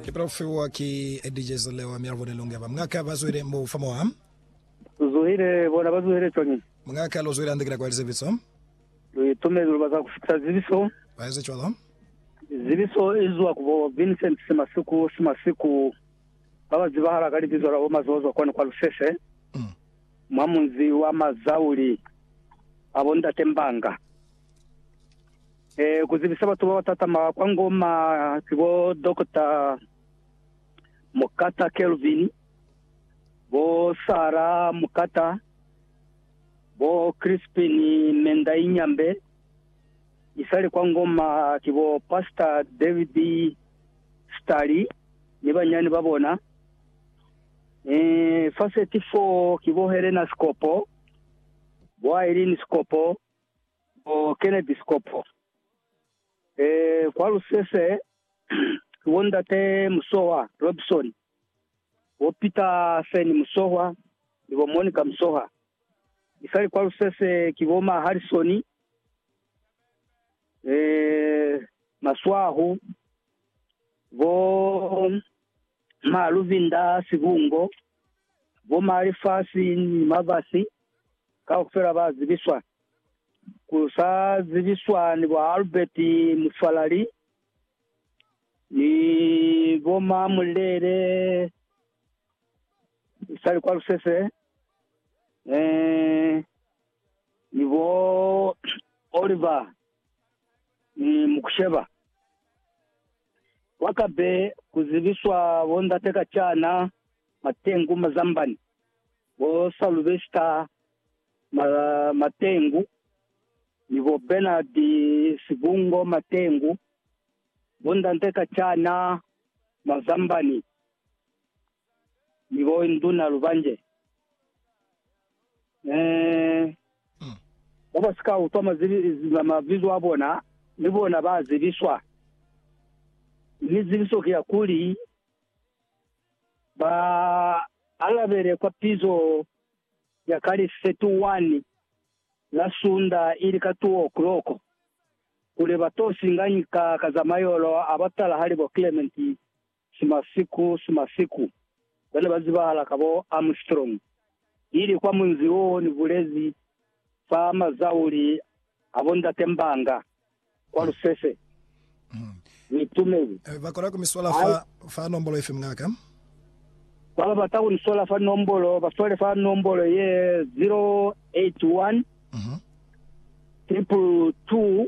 Ki tau fiwa ki Eddie Jezile wa Mialvo ni Lunge. Ba mng'aka ba zwile mbo fa mwa. Zuhile, bona ba zuhile cwañi? Mng'aka lu zwile hande kina kwa lizibiso. Lu itumezi lu bata ku fitisa zibiso. Ba ezi cwalo. Zibiso i zwa ku bo Vincent Simasiku Simasiku ba ba zibahala ka libizo la bo Mazozo kwani kwa Lusese, mwa munzi wa Mazauli, ba bo Ndate Mbanga. Eh, ku zibisa batu ba ba tatama kwa Ngoma ki bo Dokota Mokata Kelvin, bo Sara Mokata, bo Crispin Mendai Nyambe, isali kwa Ngoma ki bo Pasta David Stali ni banyani ba bona. Eh, fa 34 ki bo Helena Sikopo, bo Aileen Sikopo, Bo Kennedy Sekopo, e, kwa Lusese, ki bo Ndate Musohwa Robison, bo Peter Feni Musohwa ni bo Monica Musohwa. Mi sali kwa Lusese ki bo ma Harrison, e, Maswahu, bo Ma luvinda a sibungo, bo ma lifasi ni mabasi kaufela ba zibiswa. Ku sa zibiswa ni bo Albert Mufalali ni bo ma Mulele usali kwa Lusese, eh, ni bo Oliver ni Mukusheba. Kwa kabe ku zibiswa bo ndate ka cana Matengu Mazambani, bo Salubesta Ma, Matengu, ni bo Bernard Sibungo Matengu, bo ndate ka cana Mazambani. Ni bo induna lubanje, ba ba si ka utwa mabizo a bona, ni bona ba zibiswa, mi zibiso ki ya kuli, ba alabele kwa pizo ya ka li 31 la sunda ili ka 2 o'clock, kuli ba to singanyi ka ka za mayolo a batalahali bo Clement. Sima siku, sima siku, bane ba zibahala ka bo Armstrong, ili kwa munzi wo ni bulezi fa mazauli a bo Ndate Mbanga, kwa Lusese. Ni tumeli. Ba kona ku mi sola fa, fa nombolo ifi, mungaka? Ba ba bata ku ni sola fa nombolo, ba sole fa nombolo ye 081 222 222.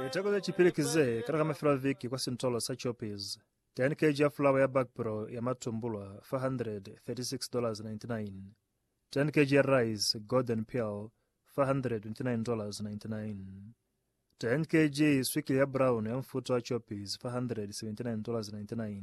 Liteko ze cipili ki ze kana ka mafelo a viki kwa sintolo sa Choppies. 10 kg ya fulawa ya bakpro ya matumbulwa, $436.99. 10 kg ya rice, golden pearl, $429.99. 10 kg swikili ya brown ya mfuto wa Choppies, $479.99.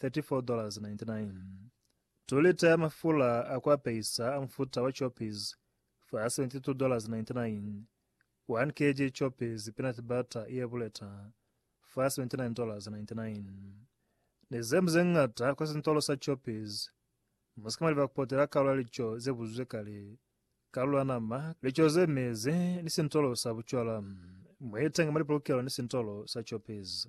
34.99 2 lita ya mafula a ku apeisa a mufuta wa Choppies fa $72.99 1 kg Choppies peanut butter ye buleta fa $79.99 Ni ze ze ñata kwa sintolo sa Choppies Mu si ka maliba ku potela kalulo ya lico ze buzuzwe kale, kalulo ya nama, lico ze mezi, ni sintolo sa bucwala. Mu itenge mwa lipolokelo ni sintolo sa Choppies.